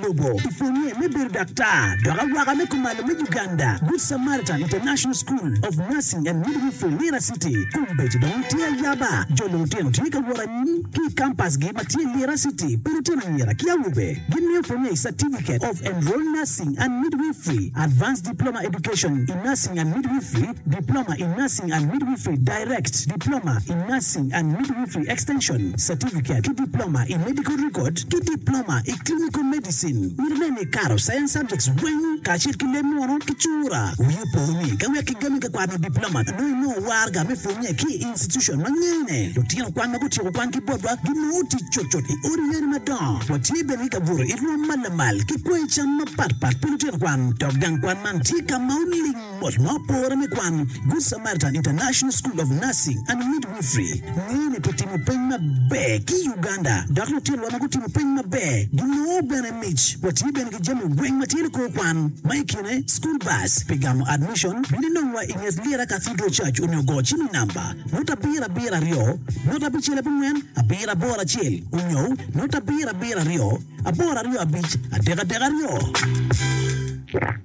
Lobo i pwonye me bedo daktar dok awaka me kumalo me Uganda, Good Samaritan International School of Nursing and Midwifery, Lira City. Kombeddi dong tye ayaba, jo lutino tye ka wot anyim ki i kampasgi ma tye Lira City pa lutino anyira ki awobe. Gimiyo pwonye i Certificate of Enrolled Nursing and Midwifery, Advanced Diploma Education in Nursing and Midwifery, Diploma in Nursing and Midwifery, Direct, Diploma in Nursing and Midwifery Extension, Certificate, ki Diploma i Medical Record ki Diploma i Clinical Medicine. Myero nen ni ikato Science Subjects weng kacel ki leb munu ki cura. Wii opo ni ka wek kigami ka kwano Diploma nongo inongo warga me pwonye ki i institution ma ngene. Lutino kwan ma gutyeko kwan ki botwa ginongo tic cutcut i odi yene madongo. Watye bene ki ka buto i rwom ma lamal ki kwoyo cam mapatpat pi lutino kwan dok gang kwan man tye ka ma oling. Bot ma opore me kwan, Good Samaritan International School of Nursing and Midwifery ngeyo ni pi timo peny maber ki i Uganda dok lutinwa ma gutimo peny maber ginongo bene mic. Watye bene ki jami weng ma tye ni kor kwan ma i kine school bus pi gamo admission. Bin inongwa i nget Lira Cathedral Church onyo go cim i namba nota abiro abiro aryo nota abicel abongwen abiro aboro acel onyo nota abiro abiro aryo aboro aryo abic adek adek aryo.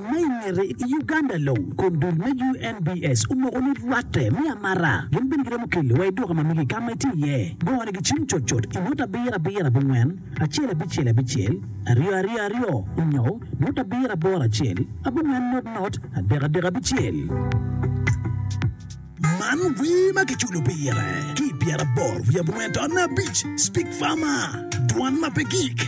Ma i ngete, i Uganda long, kom dul me UNBS omoko ni rwatte me amara gin bene giromo keli wa i duka ma mege i kama itye iye. Gone gicim cot cot i nota abiro abiro abongwen, acel abicel abicel, aryo aryo aryo, onyo nota abiro aboro acel, abongwen not not, adek adek abicel. Man wer ma kiculo pire ki i pyeraboro wiye abongwen taonne abic, Speak Farmer, Dwan ma pe gik.